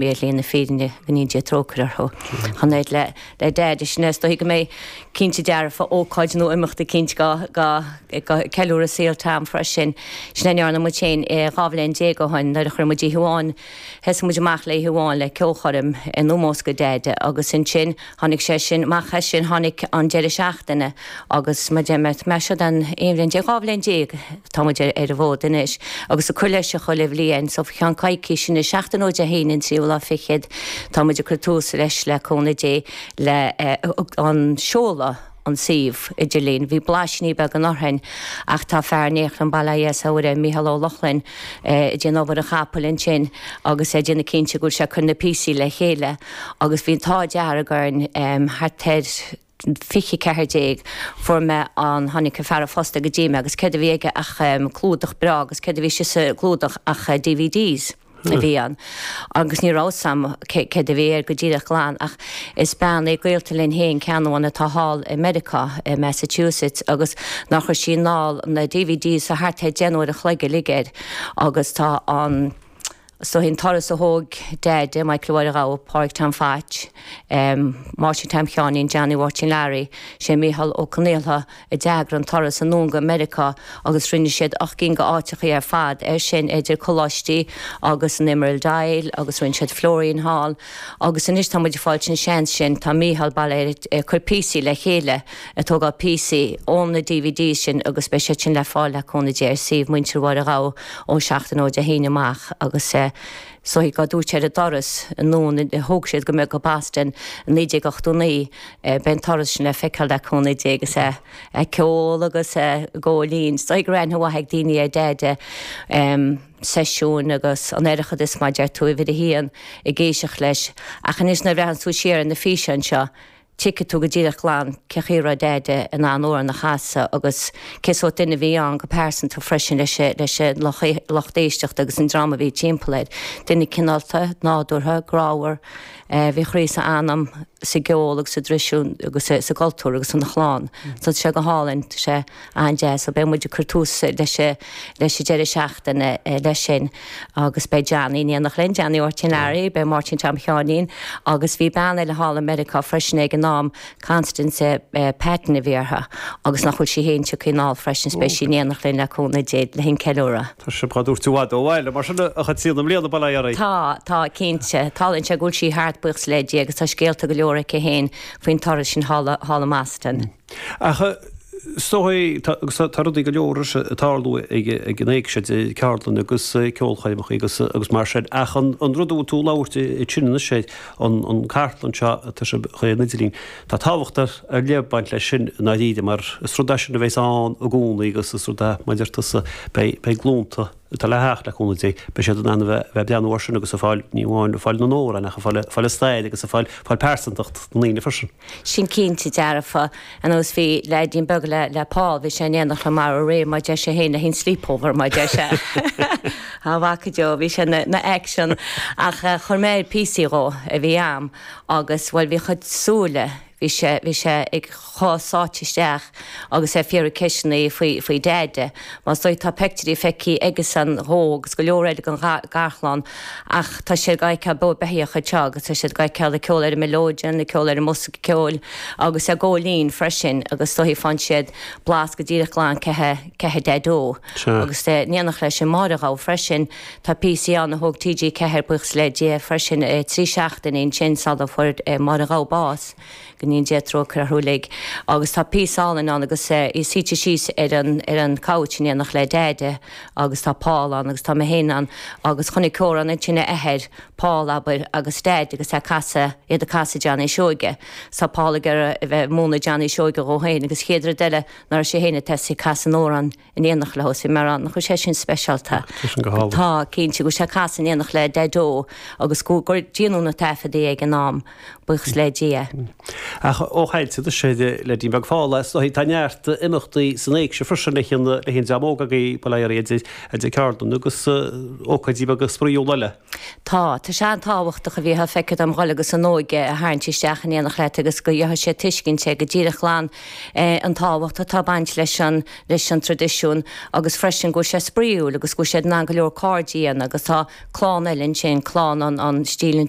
shlí na fírinne go ndéana Dia trócaire orthu. Ach an oiread le Deaide, sin é is dóichí go mbeidh cinnte dearfa, ócáid nó imeachtaí cinnte go ag ceiliúradh saol Tom freisin. Sin a ndearna muid féin dhá bhliain déag ó shin nuair a chuir muid oíche amháin, thosaigh muid amach le oíche amháin le ceolchoirm in omós go Deaide agus ansin, Tháinig sé sin, amach as sin tháinig an deireadh seachtaine agus mar mar sin an aon bhliain déag, dhá bhliain déag tá muid ar an bhfód anois agus ag cur leis chuile bhliain. So faoi cheann coicís anois, seachtain ó Dé hAoine an tríú lá fichead, tá muid ag cur tús anois le cúnamh Dé le an seoladh. an suíomh idirlín. Bhí blaisíní beaga ann ó shin ach tá fear iontach ann, bail ó Dhia is Muire air, Mícheál Ó Lochlainn, ag déanamh obair an chapaill ansin agus é ag déanamh cinnte go bhfuil sé ag cur na píosaí le chéile agus bhí an t-ádh dearg orainn thart ar 2014 fuair mé an, tháinig an fear an phosta go dtí mé agus céard a bhí aige ach clúdach breá agus céard a bhí istigh sa gclúdach ach DVDs. a bhí ann agus ní raibh fhios agam céard a bhí air go díreach glan ach is bean í gaolta linn féin, Ceannabháin atá thall i Meiriceá, i Massachusetts agus nár chuir sí anall na DVDs a thart ar 10 n-uair an chloig uilig air agus tá an is dóigh an turas a thóg Deaide, Michael Mháire Ghabha, Pádhraic Tom Photch, Máirtín Tom Sheáinín, Johnny Mháirtín Learaí, sé Mícheál Ó Conaola, a d'eagraigh an turas anonn go Meiriceá agus rinne siad ocht gcinn d'áiteachaí ar fad air sin, idir coláistí agus an Emerald Isle agus rinne siad Florian Hall agus anois tá muid ag fáilt an seans sin, tá Mícheál, bail air, ag cur píosaí le chéile, ag tógáil píosaí ón na DVDs sin agus beidh siad sin le fáil le cúnamh Dé ar suíomh Muintir Mháire Ghabha ó seachtain ó Dé hAoine amach agus. so beidh dá dtabhairt ar an turas anonn a thóg siad go mbeadh go Boston i 1989. Beidh an turas sin le feiceáil le cúnamh Dé agus a ceol agus a gcóilín. Is dóichí go raibh aithne mhaith ag daoine ar Deaide, seisiúin agus an Oireachtas mar a deir tú uimhir a haon ag éisteacht leis. Ach anois nuair a bhreathnaíonn tú siar ar na físeáin seo Tuigfidh tú go díreach glan cé chaoi a raibh Deaide in ann amhrán a chasadh agus cé sórt duine a bhí ann go pearsanta freisin leis an lucht éisteachta agus an dream a bhí timpeall air. Duine cineálta, nádúrtha, grámhar. Bhí a chroí is a anam sa gceol agus sa dtraidisiún agus sa gcultúr agus ina chlann. Tá sé go hálainn. Tá sé. An-deas, so beidh muid ag cur tús leis leis an deireadh seachtaine leis sin agus beidh Johnny in éineacht linn, Johnny Mháirtín Learaí, beidh Máirtín Tom Sheáinín agus bhí bean eile thall i Meiriceá freisin ag an am, Constance Patton a bhí uirthi agus nach bhfuil sí fhéin ag tíocht anall freisin so beidh sí in éineacht linn le cúnamh Dé le linn ceiliúradh. Tá sibh dhá dtabhairt i bhfad ó bhaile mar sin a Chaitríona, i mbliana, bail ó Dhia oraibh. Tá, tá, cinnte. Tarlaíonn sé go bhfuil sí thart, buíochas le Dia, agus tá scéalta go leor aici fhéin faoin turas sin thall thall i mBoston. Ach is dóigh é, tá rudaí go leor eile ag tarlú ag an Éigse, ceardlanna agus ceolchoirmeacha agus mar sin, ach an rud a bhfuil tú ag labhairt ansin anois air, an cartlann seo atá sibh a chur ar an idirlíon, tá tábhacht ar leith ag baint leis sin i ndáiríre mar is rud é sin a bhéas ann i gcónaí agus is rud é, mar a deir tusa, beidh glúnta, atá le theacht le cúnamh Dé. Beidh siad in ann a bheith ag breathnú air sin agus ag fáil, ní amháin ag fáil na n-amhrán, ach ag fáil a stair agus ag fáil fáil pearsantacht na ndaoine freisin. Sin cinnte dearfa. Anois bhí leaidín beag le le Paul, bhí sé in éineacht liom aréir mar a deir sé féin le haghaidh an sleepover mar a deir sé. A mhac go deo, bhí sé na na action. Ach chuir mé air píosaí dhó, a bhí a'm, agus bhuel bhí a chuid súile, Bhí sé bhí sé chomh sáite isteach agus é ag fiafraí ceisteanna faoi faoi Deaide. Mar is dóigh tá peictiúirí feicthe aigesan dhó agus go leor eile dhen gharchlann ach tá siad dhá fheiceáil beo beithíoch anseo agus tá siad dhá fheiceáil ag ceol ar an mileoidean, ag ceol ar an mbosca ceoil agus ag gabháil fhoinn freisin agus is dóigh faigheann siad blas go díreach glan cé hé cé hé Deaideo. Agus é in éineacht le Máire Ghabha freisin. Tá píosaí ann a thóg TG4 buíochas le Dia freisin. Trí seachtaine ansin sula fuair Máire Ghabha bás, go ndéana Dia trócaire orthu uilig, agus tá píosa álainn ann agus í suite síos ar an, ar an gcouch in éineacht le Deaide agus tá Paul ann agus tá mé féin ann agus chonaic Kieran ansin a athair, Paul, abair, agus Deaide agus é ag casadh, iad ag casadh Johnny Seoige. So tá Paul ag iarraidh a bheith, ag múineadh Johnny Seoige dhó féin agus chéad rud eile, ná raibh sé féin ag tosaí ag casadh an amhráin, in éineacht leo, so Máirín, nach bhfuil sé sin speisialta? Ach tá sin go hálainn. Tá, cinnte, go bhfuil sé ag casadh in éineacht le Daideo agus go, gur déanadh na taifeadtaí ag an am, buíochas le Dia. Ach ó chaintigh tú anois ar leaidín beag Phaul, is dóichí, tá neart imeachtaí san éigse freisin le haghaidh an dream óg agaí, ba léir, idir ceardlanna agus ócáidí beaga spraíúla eile. Tá. Tá sé an-tábhachtach a bheith, feictear dhom, a dhul agus an óige a tharraingt isteach in éineacht leat agus go bhfaigheadh siad tuiscint ar go díreach glan an tábhacht atá ag baint leis an leis an traidisiún agus freisin go bhfuil sé spraíúil agus go bhfuil siad in ann go leor cairde a dhéanamh agus tá clann eile ansin, clann an an stíl an